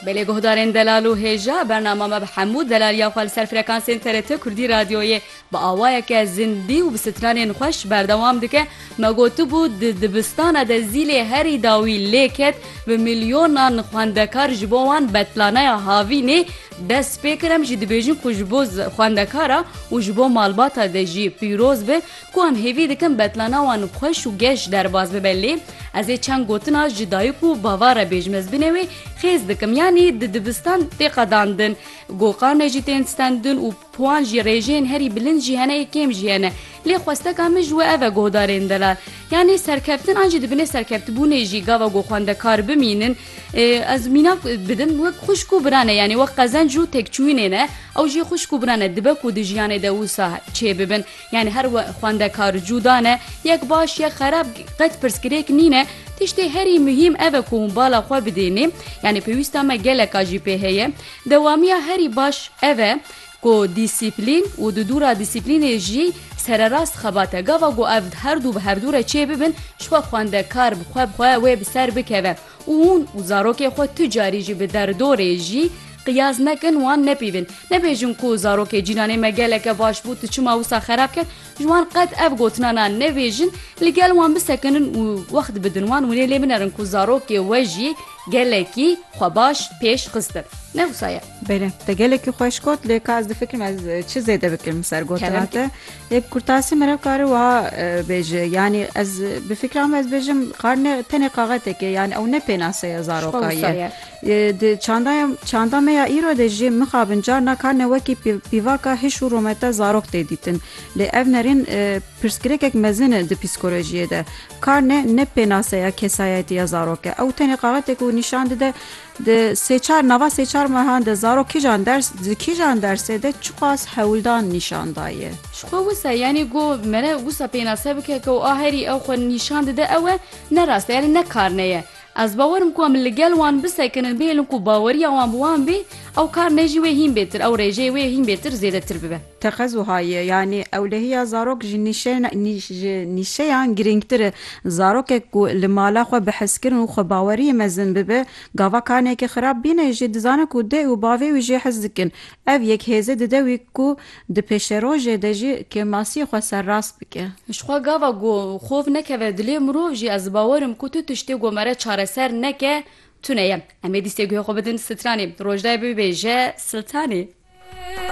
Belê guhdarên delal û hêja, bernama me bi hemû delaliya xwe li ser frekansên TRT Kurdî Radyoyê bi awayeke zindî û bi stranên xweş berdewam dike. Me gotibû di dibistana de zîlê herî dawî lê ket bi milyonan xwendekar ji bo wan betlaneya havînê dest pê kir em jî dibêjin ku ji bo xwendekara û ji bo malbata de jî pîroz be. Ku em hêvî dikin betlana wan xweş û geş derbas bibe lê ez ê çend gotina ji dayik û bava re bêjim ez binê wê xêz dikim yanî di dibistan tê qedandin goqanê jî tên stendin û piwan jî rêjeyên herî bilind jî hene ê kêm jî hene lê xwesteka min ji we ev e guhdarên delal yanî serkeftin an jî di binê serkeftibûnê jî gava ku xwendekar bimînin ez mîna bidim wek xwişk û biran e yanî wek qezenc û tekçûyînê ne ew jî xwişk û biran e dibe ku di jiyanê de wisa çêbibin Yanî her we xwendekar cûda ne, yek baş yek xerab qet pirsgirêk nîne, tiştê herî muhîm ev e ku hûn bala xwe bidênê, yanî pêwîsta me geleka jî pê heye. Dewamiya herî baş ev e ku dîsîplîn û di dûra dîsîplînê jî sererast xebat e. Gava ku ev her du bi hevdû re çêbibin, ji xwe xwendekar bi xwe bi xwe wê bi ser bikeve. û hûn û zarokê xwe tu carî jî bi derdorê jî qiyas nekin wan nepîvin. Nebêjin ku zarokê cînanê me geleke baş bû tu çima wisa xerab ket, ji wan qet ev gotinana nebêjin, li gel wan bisekinin û wext bidin wan û lê lê binerin ku zarokê we jî gelekî xwe baş pêş xistin. Ne wisa ye. Bele, te gelekî xweş got lê ka ez difikirim ez çi zêde bikim li ser gotina te. Yek kurtasî meriv kare wiha bêje yanî ez bi fikra me ez bêjim qar ne tenê qaxeteke yanî ew ne pênase ye zaroka ye di çanda çanda me ya îro de jî mixabin carna karne wekî pîvaka hiş û romete zarok tê dîtin lê ev nerîn pirsgirêkek mezin e di psîkolojiyê de karne ne pênase ya kesayetî ya zarok e ew tenê qaxetek û nîşan dide Di sê çar nava sê çar mehan de zarok kîjan ders di kîjan dersê de çiqas hewldan nîşan daye? Ji xwe wisa yanî go mere wisa pênase bike ke a herî ew xwe nîşan dide ew e, ne rast e yanî ne karne ye. Ez bawer im ku em li gel wan bisekinin bihêlin ku baweriya wan bi wan bê ew karnê jî wê hîn bêtir ew rêjeyê wê hîn bêtir zêdetir bibe. Teqez wiha ye, yanî ewlehiya zarok ji ji nîşeyan girîngtir e. Zarokek ku li mala xwe bi hezkirin û xwebaweriyê mezin bibe, gava kaneyekê xirab bîne jî dizane ku dê û bavê wî jê hez dikin. Ev yek hêze dide wî ku di pêşerojê de jî kêmasiyê xwe serrast bike. Ji xwe gava ku xov nekeve dilê mirov jî ez bawer im ku tu tiştê ku mere çareser neke tune ye. Em ê dîstê guhê xwe bidin stranê. Rojdayê bibêje siltanê.